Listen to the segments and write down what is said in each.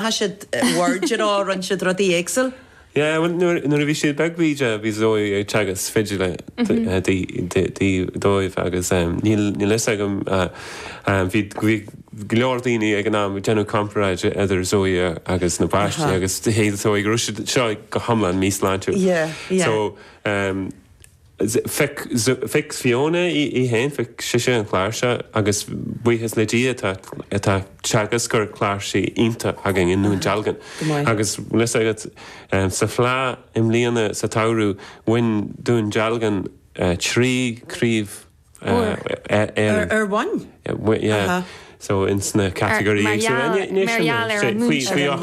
Tá siad beirt ar ár roinn siad rudaí éagsúil. Yeah, bhuel nuair a bhí siad beag bídeach bhí Zoe ag teagasc fidile dóibh agus níl níl fhios agam bhí bhí go leor daoine ag an am ag déanamh comparáid idir Zoe agus na páistí agus dúirt Zoe go raibh sé seo go hiomlán míshláintiúil. Yeah, yeah. So, um. Phioc Fiona í féin, phioc sise an chláirseach agus buíochas le Dia tá teagascóir cláirsí iontach againn i nDún Dealgan. Agus bhfuil fhios agat, sa Fleadh i mbliana, sa tsamhradh, bhain Dún Dealgan trí craobh, Ar bhain? So in sna category Mar gheall ar an múinteoir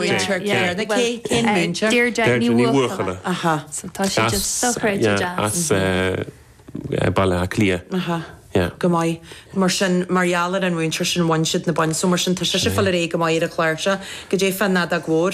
Cén múinteoir? Deirdre Ní Bhuachalla Aha So tá sí just dochreidte deas As Baile Átha Cliath Aha Yeah Go maith Mar sin mar gheall ar an mhúinteoir sin bhain siad na boinn so mar sin tá sise ag fáil ar aghaidh go maith ar an chláirseach. Cad é fá an Nadag Mhór.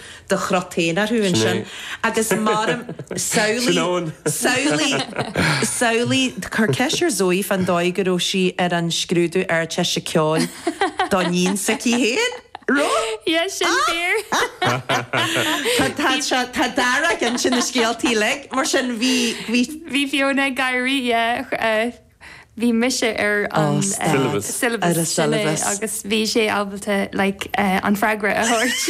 do chrotainn orthu ansin agus m'anam, samhlaigh, samhlaigh, samhlaigh, cuir ceist ar Zoe fán dóigh go raibh sí ar an scrúdú Ardteiste Ceoil do níon s'aici féin, raibh? Yeah, sin fíor! Tá d'fhear ag insint na scéalta uilig, mar sin bhí, bhí. Bhí Fiona ag éirí, yeah. bhí mise ar an syllabus sin agus bhí sí ábalta like an freagra a thabhairt.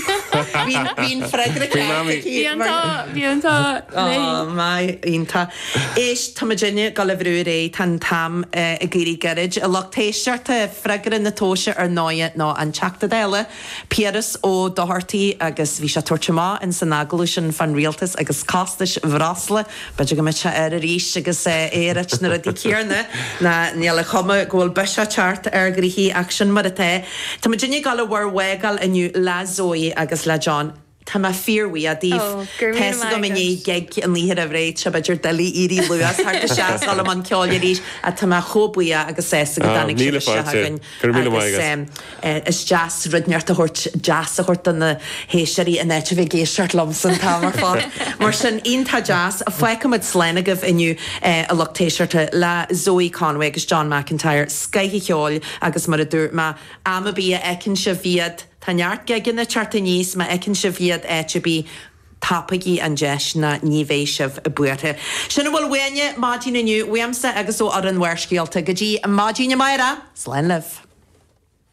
Bhí an freagra ceart aici. Bhí an t-ádh, bhí an t-ádh léi. Ó my, iontach. Éist, tá muidinne ag dul a bhrú ar aghaidh, tá an t-am ag éirí gairid. A lucht éisteachta, freagra na tomhaise ar ndóigh ná an Teachta Dála. Piaras Ó Dochartaigh agus bhí sé ag tabhairt amach insan agallamh sin fán rialtas agus costais bhreosla. B'fhéidir go mbeidh sé air arís agus é ag ráit na rudaí céarna ná níl an chuma go bhfuil biseach ag teacht ar ghnoithí ach sin mar atá. Tá muidinne ag gabháil a bhur bhfágáil inniu le Zoe agus le John. Tá mé fíor-bhuíoch daoibh. Tá fhios agam i ndiaidh gig an oíche roimh ré tá sé b'fhéidir doiligh éirí luath thar do sheas fhoghlaim an ceoil arís ach tá mé chomh buíoch agus sásta go dtáinig sibh isteach againn agus is deas rud inteacht a thabhairt deas a thabhairt do na héisteoirí in áit a bheith ag éisteacht liomsa an t-am ar fad. Mar sin, iontach deas, fágfaidh muid slán agaibh inniu a lucht éisteachta le Zoë Conway agus John McIntyre, scoth an cheoil agus mar a dúirt mé, am ar bith a fheiceann sibh iad, Tá neart gigeanna ag teacht aníos, má fheiceann sibh iad áit ar bith, tapaígí an deis ná ní bheidh sibh buartha. Sin a bhfuil uainne maidin inniu, uaimse agus ó fhoireann Bharrscéalta. Go dtí maidin amárach, slán libh.